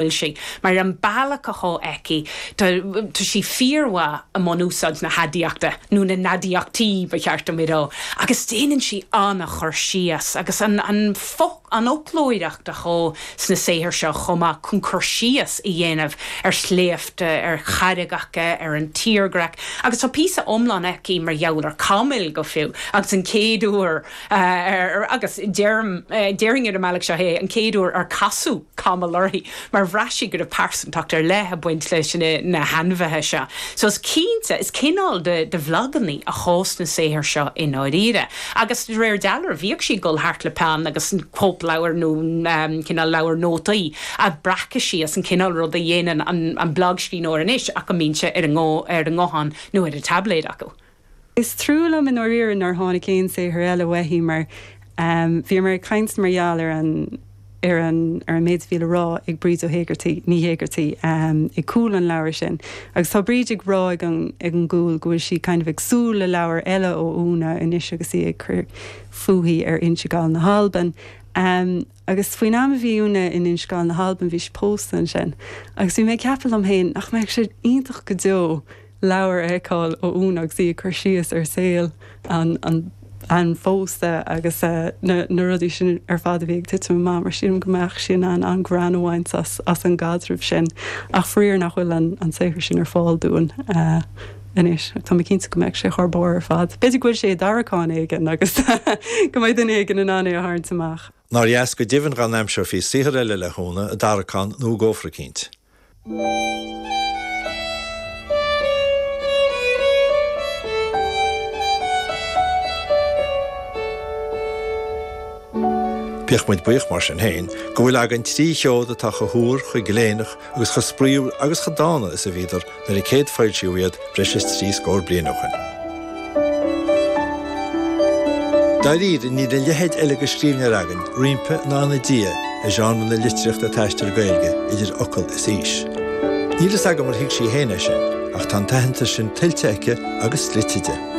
bhfuil sí, mar an bealach athá aici, tá sí fíormhaith i mbun úsáid na haidiachta, nó na n-aidiachtaí ba cheart dom a rá, agus déanann sí an-chur síos, agus an fhoclóireacht athá sna saothair seo chomh maith, chun cur síos a dhéanamh ar shléibhte, ar charraigeacha, ar an tírdhreach, agus tá píosa iomlán aici mar gheall ar chamaill, go fiú, agus an chéad uair, ar agus deirim déarfainn ar an mbealach seo é an chéad uair ar casadh camall uirthi mar bhraith sí go raibh pearsantacht ar leith ag baint leis na hainmhithe seo. So is cinnte, is cineál de bhlagannaí athá sna saothair seo i ndáiríre agus de réir dealraimh bhíodh sí ag dul thart le peann agus cóipleabhar nó cineál leabhar nótaí a bhreacadh sí as an chineál ruda a dhéanann an blagscríbhneoir anois ach go mbíonn sé ar a nguthán nó ar a dtáibléad acu. Is trua liom i ndáiríre nár tháinig aon saothar eile uaithi mar bhí mé ag caint mar gheall ar an, ar an, ar an méid a bhí le rá ag Bríd Ó hÉigeartaigh, Ní hÉigeartaigh, ag cúl an leabhair sin. Agus tá Bríd ag rá ag an, ag an gcúl go bhfuil sí kind of ag súil le leabhar eile ó Úna anois agus í ag cur fúithi ar Inse Gall na hAlban. Agus faoin am a bhí Úna in Inse Gall na hAlban bhí sí pósta ansin. Agus bhí mé ag ceapadh liom féin, nach mbeadh sé iontach go deo leabhar a fheiceáil ó Úna agus í ag cur síos ar saol an an phósta agus na rudaí sin ar fad a bhí ag titim amach mar sílim go mbeadh sí in ann an-ghreann a bhaint as an gcaidreamh sin. Ach faraor nach bhfuil an saothar sin ar fáil dúinn. Anois, tá mé cinnte go mbeadh sé thar barr ar fad. B'fhéidir go bhfuil sé i dtarraiceán éigin agus go mbeidh duine éigin in ann é a tharraingt amach. Nár dheas go deimhin dá n-aimseofaí saothar eile le hÚna i dtarraiceán nó i gcófra eicínt. Bíodh muid buíoch, mar sin féin, go bhfuil againn trí sheod atá chomh húr, chomh gléineach, agus chomh spraíúil agus chomh dána is a bhíodar nuair a céadfoilsíodh iad breis is trí scór bliain ó shin. Dáiríre, níl a leithéid eile de scríbhneoir againn roimpi ná ina diaidh i genre na litríochta taistil Gaeilge, idir fhocal is fhís. Níl a fhios agam ar thuig sí féin é sin, ach tá an t-aitheantas sin tuillte aici agus dlite di.